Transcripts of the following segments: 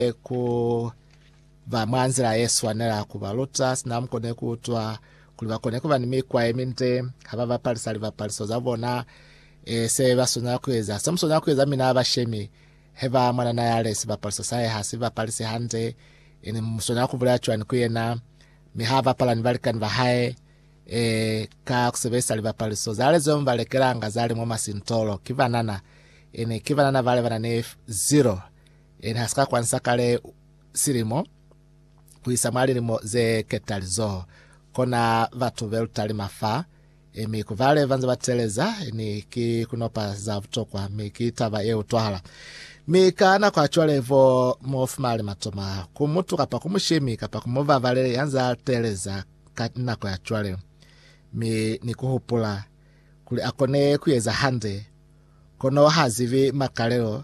e ku ba mwa nzila ye swanela, ku ba luta sina mu kone ku utwa, kuli ba kone ku ba ni mikwa ye minde ha ba bapalisa libapaliso za bona. E se ba swanela ku eza, se mu swanela ku eza mina bashemi, he ba mwanana ya le sibapaliso sa hae ha si bapalisi hande, e ni mu swanela ku bulela cwani ku yena mi ha bapala ni balikani ba hae e ka ku sebelisa libapaliso za le zeo mi ba lekelanga za li mwa masintolo? Ki banana, e ne ki banana bale ba na ni zero. Yena ha si ka kwansa kale silimo ku isa mwa lilimo ze ketali zo kona batu be lutalima fa, mi ku bale ba nze ba teeleza ni ki kunopa za butokwa, mi ki taba ye utwahala. Mi ka nako ya cwale bo mu fumali matoma ku mutu kapa ku mushemi kapa ku mubabalele ya nza teeleza ka nako ya cwale, mi ni ku hupula kuli a kone ku eza hande, kono ha zibi makalelo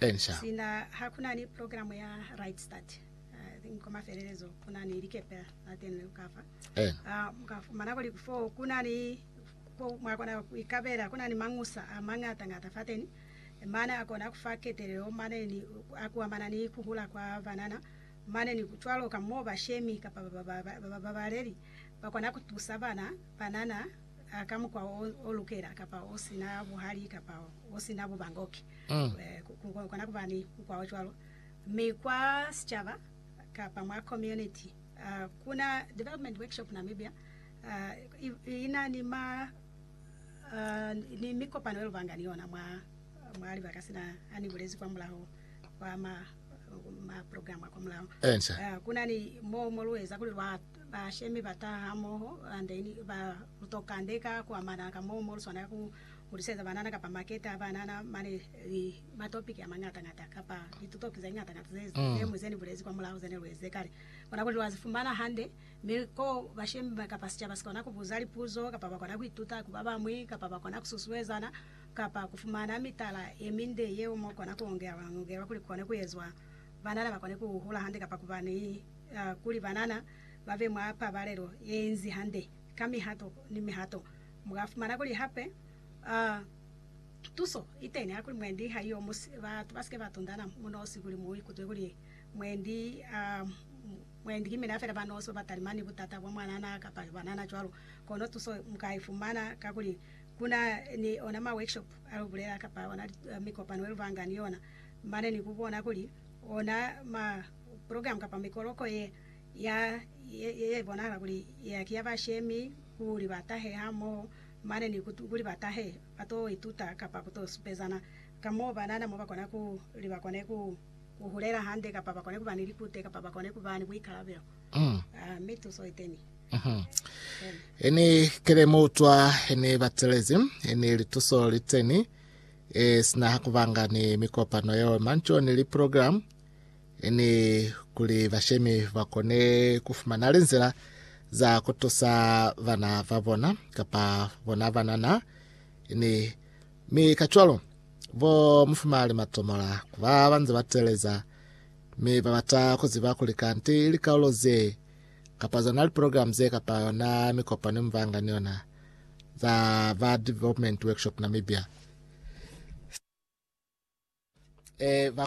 Ensha. Sina ha ku na ni program ya Right Start, I think kwa mafelelezo ku na ni likepe la teni leo ka fa. Ena. Ah, mu ka fumana kuli fo ku na ni, ko mwa kona ku ikabela, ku na ni mañusa a mañata-ñata fateni, mane a kona ku fa ketelelo, mane ni a kuamana ni ku hula kwa banana, mane ni cwalo ka mo bashemi kapa ba ba, ba babaleli ba kona ku tusa bana, banana, ka mukwa o, o lukela, kapa o si na buhali, kapa o si na bubangoki, ku kona ku ba ni mukwa o cwalo. Mi kwa sicaba kapa mwa community, ku na Development Workshop Namibia i, i na ni ma, ni mikopano ye lu banga ni yona mwa, mwa libaka sina ha ni bulezi kwa mulaho kwa ma, ma program a kwa mulaho. Ku na ni mo, mo lu eza kuli lwa Bashemi ba taha hamoho then ba to kandeka ku amana ka moo mo lu swanela ku huliseza banana kapa makete a banana mane ni matopiki a mañata-ñata kapa litutoki ze ñata-ñata ze temu ze ni bulezi kwa mulaho ze ne lu ezize kale. Kona kuli lwa zi fumana hande, mi ko bashemi kapa sicaba si kona ku buza lipuzo kapa ba kona ku ituta ku ba bañwi kapa ba kona ku susuezana kapa ku fumana mitala ye minde yeo mo kona ku ongelwa-ongelwa kuli ku kone ku ezwa banana ba kone ku hula hande kapa ku ba ni kuli banana ba be mwa pabalelo ye inzi hande ka mihato ni mihato. Mu ka fumana kuli hape tuso i teni hakuli mwendi ha iyo musi batu ba si ke ba tundana mu nosi kuli mu ikutwe kuli mwendi mwendi ki mina fela ba nosi ba ba talimani ni butata bwa mwanana kapa banana cwalo. Kono tuso mu ka i fumana ka kuli ku na ni ona ma workshop a lu bulela kapa ona mikopano ye lu banga ni yona mane ni ku bona kuli ona ma Program kapa mikoloko ye ya ye ye bonahala kuli ya ki ya bashemi kuli ba tahe ha moho mane ni kuli ba tahe ba to ituta kapa ku to supezana ka mo ba nana mo ba kona kuli ba kone ku ku hulela hande kapa ba kone ku ba ni likute kapa ba kone ku ba ni buikalabelo. Ah, mi tuso iteni. He ni kele mo utswa he ni batelezi he ni lituso liteni e sina ha ku banga ni mikopano yeo manco ni li program ni kuli bashemi ba kone ku fumana linzila za ku tusa bana ba bona kapa bona banana ni mi ka cwalo bo mufumali matomola ku ba ba nze ba teleza mi ba bata ku ziba kuli kanti likaulo ze kapa zona liprogramu ze kapa yona mikopano mibanga ni yona za ba Development Workshop Namibia e, ba